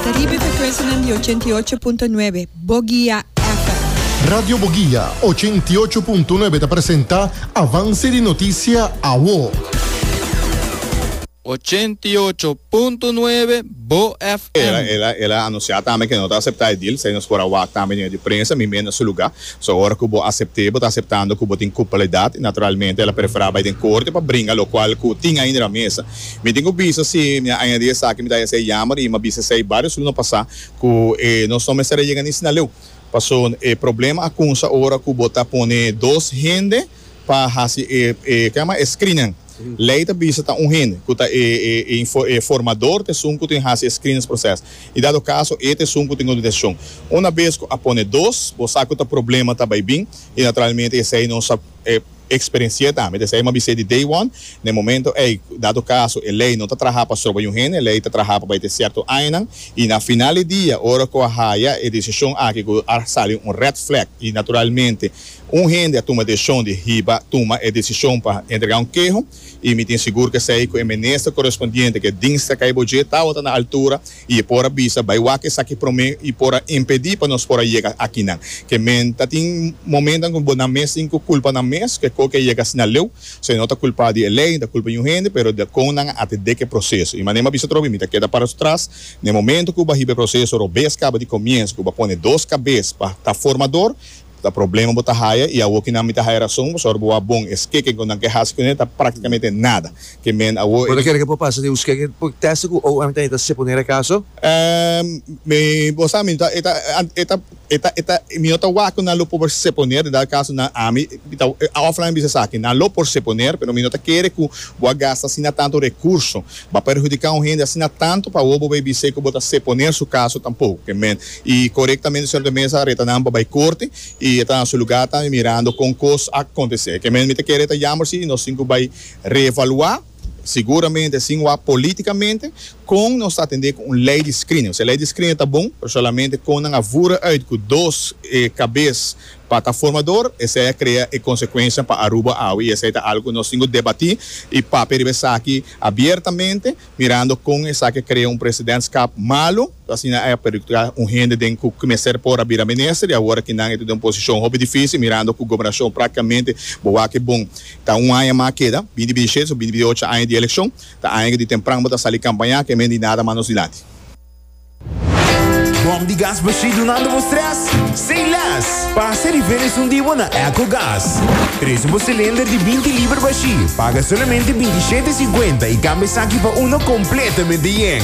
Ta riba e frekwensianan di ochenta i ocho punto nuebe Bogia FM. Radio Bogia ochenta i ocho punto nuebe ta presenta Avance di Noticia Awo. Ochenta i ocho punto nuebe Bo FM. El a anuncia tambe cu e no ta acepta e deal, esey nos por a wak tambe di medio di prensa, mi meen na su lugar. So ora cu bo acepte, bo ta aceptando cu bo tin culpabilidad y naturalmente el a prefera bay den corte pa bringa locual cu tin ainda na mesa. Mi tin cu bisa si mi a añadi esaki mi ta hesey yamer y mi a bisa esey barios luna pasa cu e nos no mester a yega ni Sinaleu paso e problema a cunsa ora cu bo ta pone dos hende pa haci e e kico a yama e screenan ley ta bisa ta un hende cu ta e e e info e formador ta esun cu tin haci e screenes proces y dado caso e ta esun cu tin autorizacion una bes cu a pone dos bo sa cu ta problema ta bay bin y naturalmente esey nos a e experenci'e tambe, desei mi a bis'é di day one, n'e momento ei, dado caso e ley no ta traha pa stroba un hende, e ley ta traha pa bai te cierto añanan, y na final di dia, ora cu a haya e decision aki cu a sali un red flag, y naturalmente un hende a tuma decision di hiba tuma e decision pa entrega un keho, i mi tin sigur ku esei ku e minister korespondiente ku e dingstra kai bo dje tabata na altura i e por a bisa, Bai wak esaki promé i por a impedí pa nos por a yega aki nan. Ke men ta tin momentonan ku bo nan mes tin ku kulpa nan mes ku e ko ku a yega asina leu. So e no ta kulpá di e lei ni ta kulpa di un hende pero di kon nan a atendé ku e proseso. I manera mi a bisa tropi mi ta keda para tras na e momentu ku bo a hiba e proseso robes kaba di komiensu ku bo a pone dos kabes pa ta formador Ta problema bo ta haya y awo kinan mi ta haya rason pasobra bo a bon. E skeken cu nan ke haci cu nan ta practicamente nada. Ke men awo e. Bo ta kere ke por pasa den un skeken por testa cu OM ta hita seponer e caso? Ehm, mi, bo sa mi no ta, e ta, e ta, e ta, e ta, mi no ta wak cu nan lo por seponer den dado caso nan a mi ta, offline a bisa esaki, nan lo por seponer pero mi no ta kere cu bo a gasta asina tanto recurso, bo a perhudica un hende asina tanto pa awo bo bay bis'e cu bo ta seponer su caso tampoco. Ke men. Y corectamente Señor ta mesa reta nan pa bay corte y e ta na su lugar tambe mirando con cos a acontece. Ke mes mi ta kere e ta yamber si nos tin cu bay reevalua, seguramente sin wak politicamente, con nos ta atende cu un ley di screening. Osea, ley di screening ta bon, pero solamente con nan a vura uit cu dos cabes pa ta formador, esey a crea e consecuencianan pa Aruba awe y esey ta algo cu nos tin cu debati y papia riba esaki abiertamente, mirando con esaki a crea un presidentschap malo. Ta asina e perutra un hende den ku mester por a bira minister i awor aki nan e ta den un posishon hopi difísil mirando ku gobernashon praktikamente bo wak e bon. Ta un aña mas a keda, binti bitishet so binti bitiocho aña di elekshon, ta aña ku di tempran bo ta sali kampañá ke men di nada mas nos dilanti. Bòm di gas bashí dunando bo strès? Say less! Pasa riba e esun di bo na Echo Gas. Trese bo silinder di binti liber bashí, paga solamente bintishete e siguenta i kambia esaki pa uno kompletamente yen.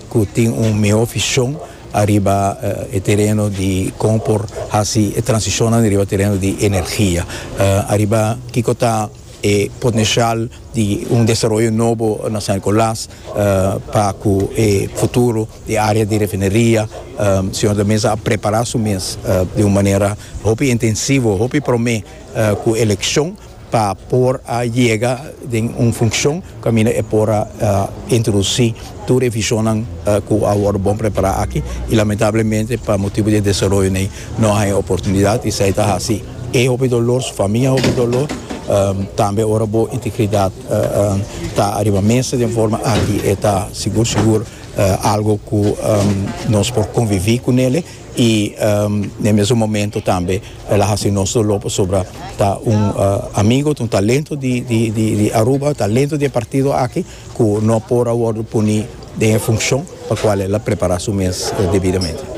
cu tin un mihó vision ariba e tereno di con por haci e transicionnan riba tereno di energia, ariba kico ta e potencial di un desaroyo nobo na San Nicolas pa cu e futuro di e area di refineria Señor ta mester a prepara su mes di un manera hopi intensivo, hopi prome cu eleccion. pa por a yega den un funcion caminda e por a introduci tur e visionnan cu a worde bon prepara aki y lamentablemente pa motibo di e desaroyonan ey no a haya oportunidad y esey ta haci e hopi dolor su famia hopi dolor tambe ora bo integridad ta ariba mesa den forma aki e ta sigur sigur algo cu nos por convivi cu nele. y n'e mesun momento tambe el a haci nos dolor pasobra ta un amigo ta un talento di Aruba talento di e partido aki cu no por a wordo poni den e funcion pa cual el a prepara su mes debidamente.